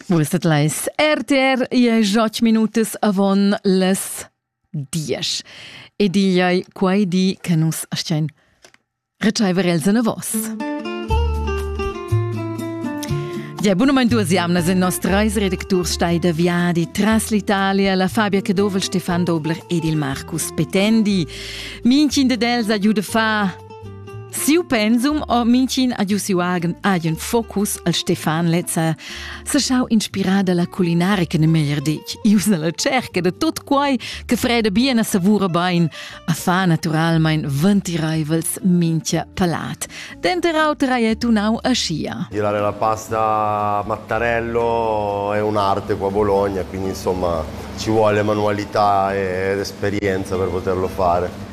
Vuestet leis RTR ie joc minutas avon les diesch. Ed igl ei quei di che nus astein retscheiver els en vos. Ja, bunament duas jamnas in nos treis redacturs steida viadi tras l'Italia, la Fabia Cadovel, Stefan Dobler ed il Marcus Petendi. Minchin de dels ha giu de fa Siu pensum o mincin a giusiu agen agen focus al Stefan Lezza se schau inspirà dalla culinarica ne meglier detg, ius nella cerca de tot quai che freda bien a savura bain, a fa naturalmein ventireivels mincha palat. Denter auter hai e tunau a scia. Girare la pasta Mattarello è un'arte qua a Bologna, quindi insomma ci vuole manualità ed esperienza per poterlo fare.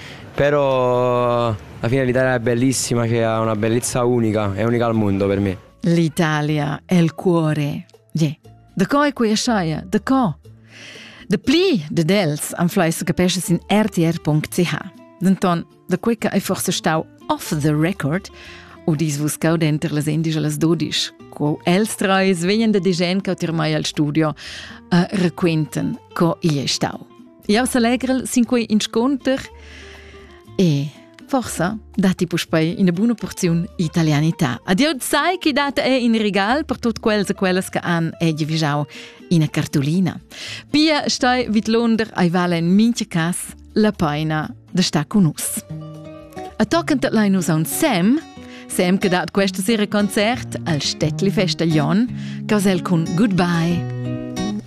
Però alla fine l'Italia è bellissima, che ha una bellezza unica, è unica al mondo per me. L'Italia è il cuore. Yeah. Da co è quella sciaia? Da co? Da pli de dels am fleiss capesce sin rtr.ch. Denton, da quei che è forse stau off the record, u dis vus cau denter las endisch e las dodisch, co els treis vegnan da digen che ti mai al studio a uh, requenten co igl è stau. Jau s'allegrel sin quei inscunter e forsa datti puspei ina buna porziun italianità. Adieu sai chi dat è in regal per tutti quels e quelles che han egi vigiau ina cartolina. Pia stai vid Londra ai vala in mincha cas la paina de sta con us. A toccant lai nus a un Sam, Sam che dat questa sera concert al Städtli Festaglion, cosel cun Goodbye.